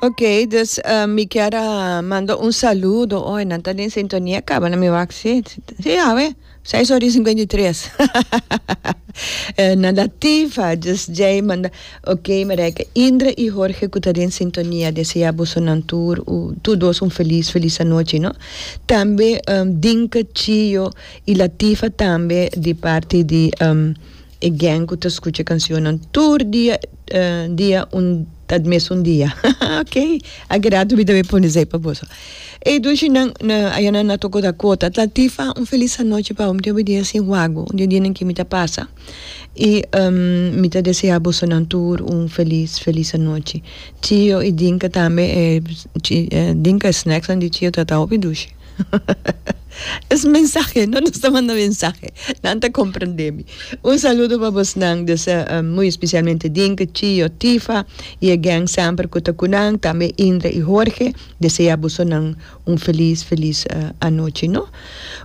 Ok dus uh, mi kier uh, manda un saludo hoy nan ta den sintonia caba na mi wak si si ya we 6 horas 53 uh, na latifa dus jay manda ok mereka Indra y Jorge ku ta den sintonia desea busu nan tur uh, tur dos un feliz feliz anochi no tambe um, Dinka Chio y Latifa tambe di parti di um, E gèng ku ta skucha e kansionnan tur dia dia un ta mes un dia haha ok a keda mi tambe pone esei pa boso ey dushinan ayanan a toko ta kota tlatifa un felis anochi pa bo mi tambe dia sin huago un di dinan ke mi ta pasa y mi ta desea boso nan tur un felis felis anochi chio y dinka tambe dinka e snacks nan di chio ta ta hopi dushi. Es mensahe no nos ta manda mensahe nan ta comprende mi un saludo pa bos nan muy especialmente Dink, Chio, Tifa y e gang semper cu ta cu nan tambe Indra y Jorge desea boso nan un feliz feliz anochi no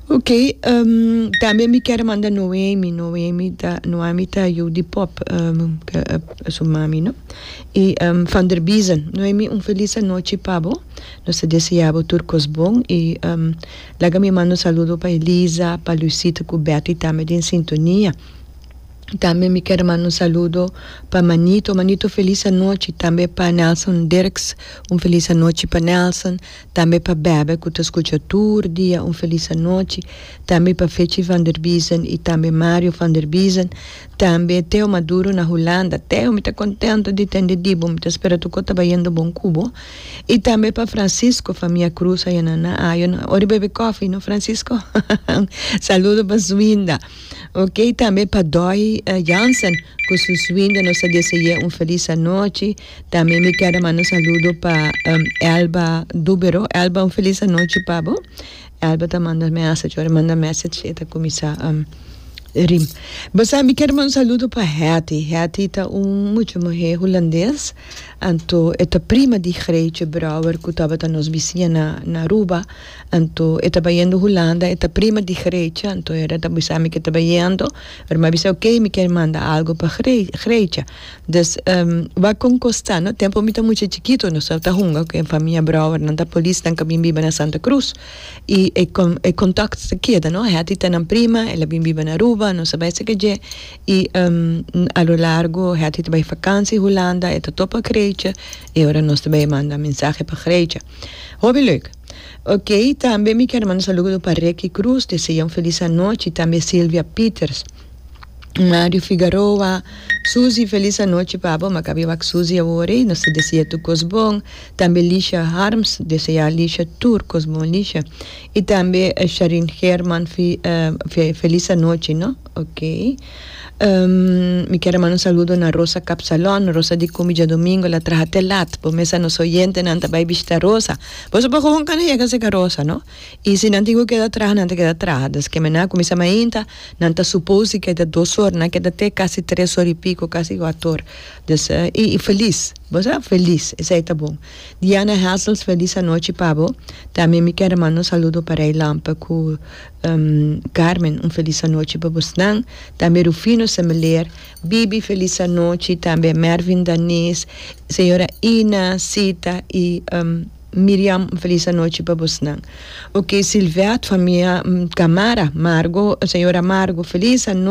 ok tambe mi kier manda Noemi, Noemi ta Noemi ta yu di pop su mami no y Vanderbiesen Noemi un feliz anochi pa bo. Nos ta deseá bo tur kos bon i laga mi manda un saludo pa Elisa, pa Luisita ku Bertie tambe den sintonia. Tambe mi kere manda un saludo pa Manito, Manito felis anochi, tambe pa Nelson Dirks un felis anochi pa Nelson, tambe pa Bèbè ku ta skucha tur dia un felis anochi, tambe pa Fetji Vanderbiesen i tambe Mario Vanderbiesen, Tambe Teo Maduro na Hulanda. Teo, mi ta contento di tende di bo, mi ta spera toco ta bayendo bon cu bo. Y tambe pa Francisco, famia Cruz aya na na ayo no ora bebe coffee no Francisco? Saludo pa su winda. Ok, tambe pa Doy Jansen cu su swinda nos ta dese'e un feliz anochi. Tambe mi keda manda saludo pa Elba Dubero. Elba un feliz anochi pa bo. Elba ta manda ameasa cu ora manda message e ta cuminsa rim. Bo sa mi kier manda un saludo pa Hetty, Hetty ta un mucha muher Hulandes anto e ta prima di Greetje Brouwer cu tabata nos bisiña na na Aruba anto e ta bayendo Hulanda e ta prima di Greetje anto era ta bisa mi ke ta bayendo ora mi a bisa ok mi kier manda algo pa Gre-Greetje. Dus, wak kon kosta, no? Tempu mi ta mucha chikito, nos tabata hunga ku e famia Brouwer, nan ta polis, nan ka bin biba na Santa Cruz. I e kon, e kontakt ta keda, no? Hattie ta nan prima, el a bin biba na Aruba, nos a bai saka dje. I, a lo largu, Hattie ta bai fakansi Hulanda, e ta topa Greitje, i ora nos ta bai manda mensahe pa Greitje. Hopi leuk! Oké, tambe mi kier manda saludo pa Ricky Cruz, deseá un felis anochi, tambe Silvia Pieters. Mario Figaroa, Susie felis anochi pabo makabi wak Susie awor ey nos ta deseá tur kos bon tambe Lisha Harms deseá Lisha tur kos bon Lisha y tambe Sharin Herman felis anochi no ok mi kier a manda un saludo na Rosa Kapsalon Rosa di Cumi diadomingo ela traha te lat bo mes a nos oyentenan ta bay bishita Rosa boso por hoon kan a yega a sega Rosa no I si nan tin ku keda traha nan ta keda traha. Des ke menan kuminsá mainta nan ta supos di ke ta dos or, nan keda te kasi tres or i piko, kasi kuato or. Des i i felis, bo sa, felis esei ta bon. Diana Hassels felis anochi pa bo. Tambe mi kere manda un saludo pa Rey Lampa ku Carmen un felis anochi pa bosnan. Tambe Rufino Semeleer, Bibi felis anochi tambe, Mervin Danis, señora Ina, Sita i. Miriam, un felis anochi pa bosnan. Oke, Silvette, famia Camara, Margo, señora Margo, felis anochi.